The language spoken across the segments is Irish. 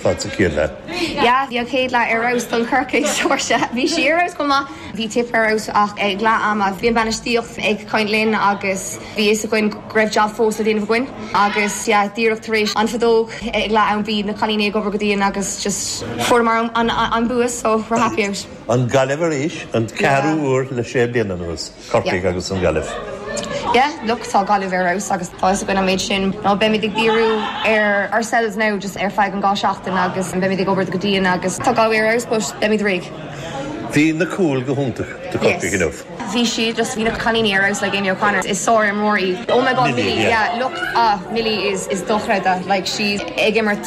Tá tú ciúin le. Yeah, bhí an chéad leath ar fheabhas don Corcaigh, Saoirse. Bhí sí ar fheabhas chomh maith. Bhí Tipp ar fheabhas ach ag leath ama bhí an bainistíocht ag caint linn agus bhí fhios againn go raibh jab fós le déanamh againn agus yeah díreach tar éis an fheadóg ag leath am bhí na cailíní ag obair go dian agus just fuaireamar an bua so we're happy out. An Gaillimh arís, an ceathrú huair le sé bliana anuas. Corcaigh agus an Ghaillimh. yeah look tá Gaillimh ar fheabhas agus tá fhios againn an méid sin now beimid ag díriú ar ourselves now just ar feadh an dhá seachtain agus an beimid ag obair go dian agus tá Galway ar fheabhas but beimid réidh. Bhí na cúil go hiontach do Corcaigh inniu. Yes bhí siad just bhí na cailíní ar fheabhas like Amy O'Connor is sár-imreoir í. Oh my God Millie yeah look ah Millie is is dochreidte like she's ag imirt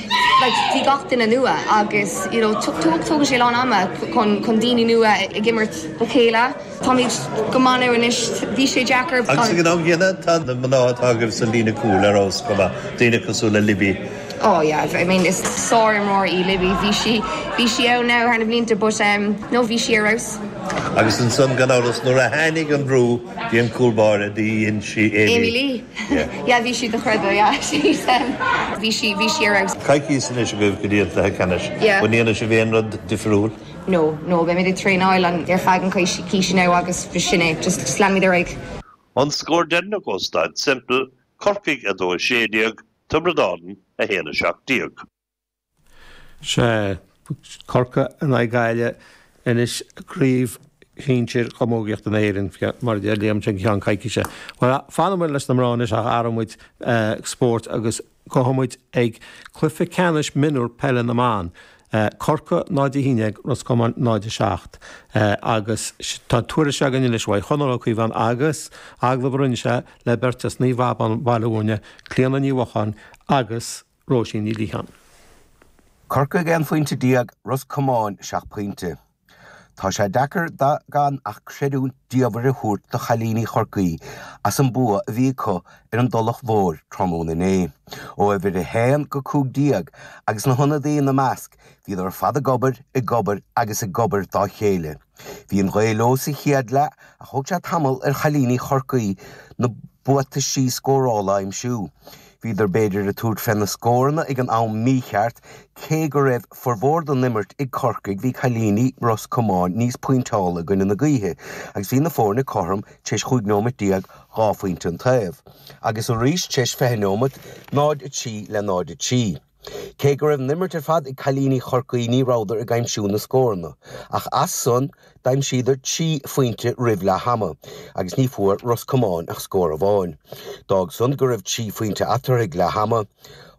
like bhí gach duine nua agus you know tógann tógann sé a lán ama chun chun daoine nua ag imirt le chéile táimid go maith now anois bhí sé deacair Agus ag an am gcéanna tá na mná atá agaibh sa líne cúil ar fheabhas chomh maith, daoine cosúil le Libby. oh yeah I mean is sár-imreoir í Libby bhí sí bhí sí ann now thar na blianta but em no bhí sí ar fheabhas. Agus ansan gan amhras nuair a tháinig an brú bhí an cúl báire the dhein sí Amy Lee. yeah bhí sí dochreidte yeah she's um bhí sí bhí sí ar fheabhas. Coicís anois agaibh go dtí an cluiche ceannais. Yeah. An ndéanfaidh sibh aon rud difriúil? No, no, beimid ag traenáil an ar feadh an coicís now agus sin é, just just leanfaimid ar aghaidh. An scór deireanach ó Staid Semple, Corcaigh 2 16, Tiobraid Árann 1 17. Sea, Corcaigh in aghaidh Gaillimhe, anois i gcraobh shinsir chamógaíochta na hÉireann, mar a deir Liam, i gceann coicíse. Bhuel, fanfaimid leis na mná anois ach athróimid spórt agus gabhfaimid ag cluiche ceannais mionúr peile na mban. Corcaigh 0, 11, Ros Comáin 0, 7. Agus tá tuairisc againn anois uaidh Chonall Ó Cíobháin agus agallamh a rinne sé le beirt as Naomh Abán Baile Mhúirne, Clíona Ní Mhocháin agus. Róisín Ní Liatháin. Corcaigh 11 phointe, Ros Comáin 7 pointe. Tá sé deacair gan ach creidiúint diamhair a thabhairt do chailíní Chorcaí as an bua a bhí acu ar an dTulach Mhór tráthnóna inné. Ó uimhir 1-15 agus na hionadaí ina measc, bhíodar ar fad ag obair, ag obair agus ag obair dá chéile. Bhí an ghaoth leo sa chéad leath ach thóg sé tamall ar chailíní Chorcaí na buataisí scórála a aimsiú. Bhíodar b'fhéidir ag tabhairt fé na scóranna ag an am mícheart, cé go raibh formhór den imirt ag Corcaigh bhí cailíní Ros Comáin níos pointeálta i gcoinne na gaoithe agus bhí na foirne cothrom tar éis 15 nóimeat, dhá phointe an taobh agus arís tar éis 20 nóimeat, 0, 3 le 0, 3. Cé go raibh an imirt ar fad ag cailíní Chorcaí ní rabhadar ag aimsiú na scóranna ach as san d'aimsíodar trí phointe roimh leath ama agus ní bhfuair Ros Comáin ach scór amháin. D'fhág san go raibh trí phointe eatarthu ag leath ama.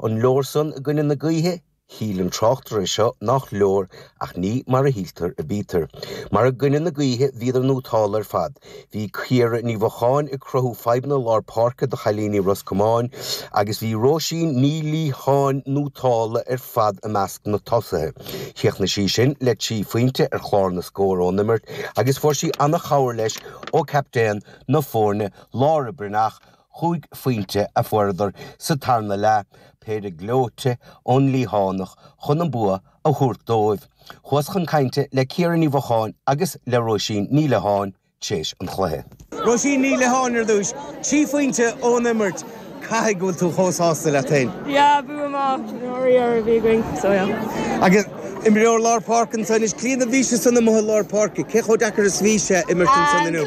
An leor san i gcoinne na gaoithe? Shíl an tráchtaire seo nach leor ach ní mar a shíltear a bítear. Mar i gcoinne na gaoithe bhíodar nótálta ar fad Bhí Ciara Ní Mhocháin ag cruthú fadhbanna lár páirce do chailíní Ros Comáin agus bhí Róisín Ní Liatháin nótálta ar fad i measc na tosaithe. Chríochnaigh sí sin le trí phointe ar chlár na scór ón imirt agus fuair sí an-chabhair leis ó captaen na foirne Laura Breathnach, chúig phointe a fuaireadar sa tarna leath, péire gleoite ón Liathánach chun an bua a a thabhairt dóibh. Chuas chun cainte le Ciara Ní Mhocháin agus le Róisín Ní Liatháin tréis an chluiche. Róisín Ní Liatháin ar dtús. Trí phointe ón imirt, caithfidh go bhfuil tú chomh sásta leat féin? Yeah, bua maith, nó ríar a bhí againn, so yeah. Agus imreoir lár páirce anso anois, Cliodhna, bhís ansan amuigh i lár páirce. Cé chomh deacair is bhí sé imirt ansan inniu?